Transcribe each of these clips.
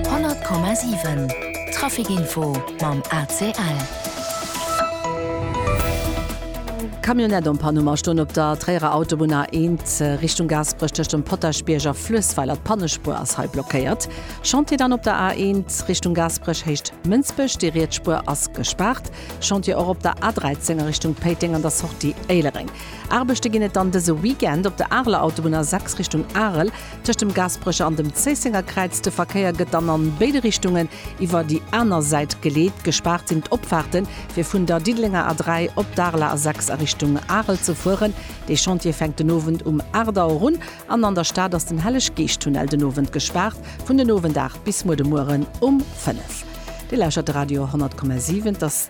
100,7 Trafic Info mam ACL. Camionnette en panne um Astoun op der Tréierer Autobunn A1 Richtung Gaasperech tëscht dem Potaschbierg a Fluessweiler. D'Pannespuer ass hei blockéiert. Chantier dann op der A1 Richtung Gaasperech héicht Mënsbech. Déi riets Spuer ass gespaart. Chantier och op der A13 a Richtung Péiteng an der Sortie Éilereng. Aarbechte ginn et dann dëse Weekend op der Areler Autobunn A6 Richtung Arel. Tëscht dem Gaasperecher an dem Zéissenger Kräiz. De Verkéier gëtt dann an béide Richtungen iwwer déi aner Säit geleet. Gespaart sinn d'Opfaarte fir vun der Diddelenger A3 op d'Areler A6 a Richtung Arel ze fueren. Dee Chantier fänkt den Owend um 8 Auer un. An an der Stad ass den Helleg-Geescht-Tunnel den Owend gespaart, vun den Owend 8 bis muer de Mueren um 5. Dir lauschert de Radio 10,7. Et ass.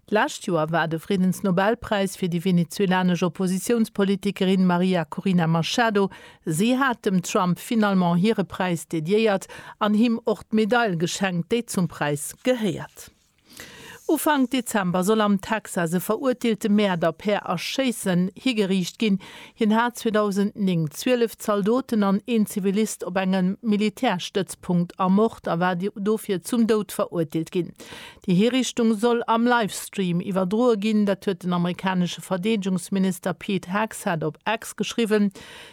D'lescht Joer war de Friddensnobelpräis fir déi venezuelanesch Oppositiounspolitikerin Maria Corina Machado. Si hat dem Trump finalement hire Präis dediéiert an him och d'Medail geschenkt, déi zum Präis gehéiert. Ufank Dezember soll am Texas e verurteelte Mäerder per Erschéissen higeriicht ginn. Hien hat 2009 zwielef Zaldoten an een Zivilist op engem Militärstëtzpunkt ermort a war dofir zum Doud verurteelt ginn. Déi Hiriichtung soll am Livestream iwwerdroe ginn. Dat huet den amerikanesche Verdeedegungsminister Pete Hegseth op X geschriwwen.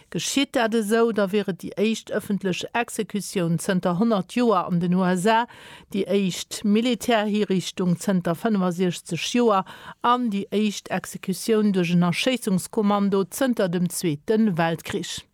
Geschitt dat esou, da wier et déi éischt ëffentlech Exekutioun zënter 100 Joer an den USA, déi éischt Militärhiriichtung zënter 65 Joer an déi éischt Exekutioun duerch en Erschéissungskommando zënter dem Zweete Weltkrich.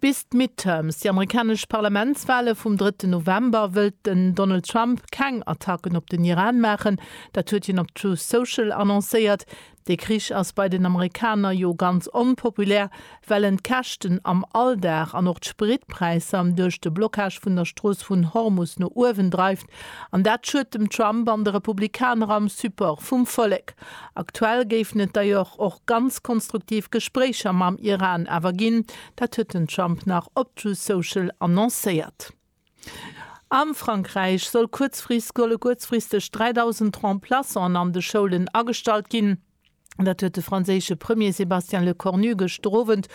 Bis d'Midterms, déi amerikanesch Parlamentswale vum drëtten November, wëllt den Donald Trump keng Attacken op den Iran maachen. Dat huet hien op Truth Social annoncéiert. De Krich ass bei den Amerikaner jo ganz onpopulär, well en d'Käschten am Alldag an och d'Spritpräisser duerch de Blockage vun der Strooss vun Hormus no uewen dreift. An dat schued dem Trump an de Republikaner am Support vum Vollek. Aktuell géifen et d'ailleurs och ganz konstruktiv Gespréicher mam Iran awer ginn, dat huet den Trump nach op Truth Social annoncéiert. A Frankräich soll kuerzfristg 3.000 Remplaçanten an de Schoulen agestallt ginn. Dat huet de franséische Premier Sébastien Lecornu gëschter Owend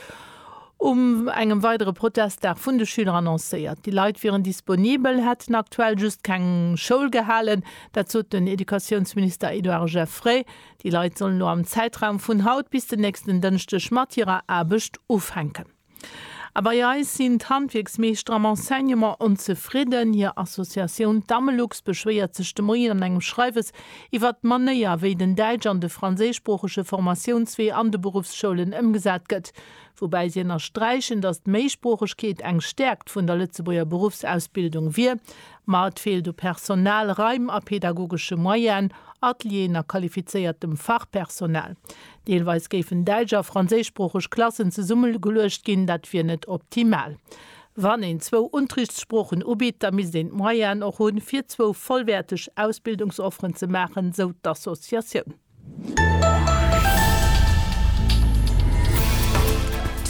um engem weidere Protestdag vun de Schüler annoncéiert. Déi Leit wieren disponibel, hätten aktuell just keng Schoul gehalen. Dat sot den Educatiounsminister Edouard Geffray. Déi Leit sollen elo am Zäitraum vun haut bis den nächsten Dënschdeg mat hirer Aarbecht ufänken. A bei eis sinn d'Handwierksmeeschter am Enseignement onzefridden. Hir Associatioun Damelux beschwéiert sech de Moien an engem Schreiwes iwwert d'Manéier, wéi den däitsch an de franséischsproochege Formatiounswee an de Beruffsschoulen ëmgesat gëtt. Woubäi si ënnersträichen, datt d'Méisproochegkeet eng Stäerkt vun der Lëtzebuerger Beruffsausbildung wier. Ma et feelt u Personal, Raim a pedagogesche Moyenen, Atelieren a qualifizéiertem Fachpersonal. Deelweis géifen däitsch a franséischsproocheg Klassen zesummegeluecht ginn, dat wier net optimal. Wann een zwou Unterrichtssproochen ubitt, da misst een d'Moyenen och hunn, fir zwou vollwäerteg Ausbildungsofferen ze maachen, sou d'Associatioun.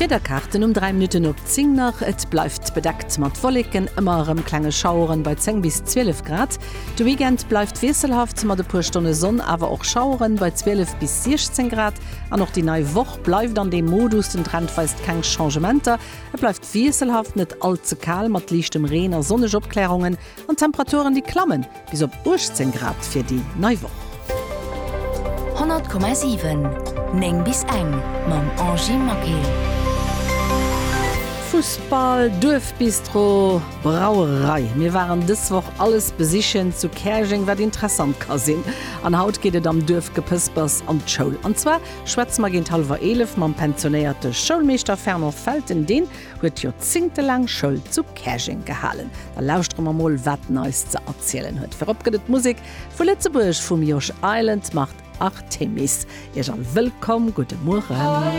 D'Wiederkaarten um 3 Minutten op 10 nach, Et bleift bedeckt mat Wolleken, ëmmer erëm klenge Schaueren bei 10 bis 12 Grad. De Weekend bleift wiesselhaft mat e puer Stonne Sonn, awer och Schaueren bei 12 bis 16 Grad. An och déi nei Woch bleift an deem Modus, den Trend weist keng Changementer. Et bleift wiesselhaft, net all ze kal mat liichtem Reen a sonneg Opklärungen an Temperaturen, déi klammen bis op 18 Grad fir déi nei Woch. 100,7 9 bis eng mam Angy Maquet. Fussball, Duerfbistro. Brauerei. Mir waren dës Woch alles besichen zu Käerjeng wat interessant ka sinn. An haut geet et am Duerfgepëspers an d'Schoul. An zwar schwätze mer géint hallwer 11 mam pensionéierte Schoulmeeschter Fernand Felten. Deen huet joerzéngtelaang Schoul zu Käerjeng gehalen. Da lauschtere mer mol wat en eis ze erzielen huet. Virop gëtt et Musek vu Lëtzebuerg vum Josh Island mat Artemis. Iech all wëllkomm. Gudde Mueren.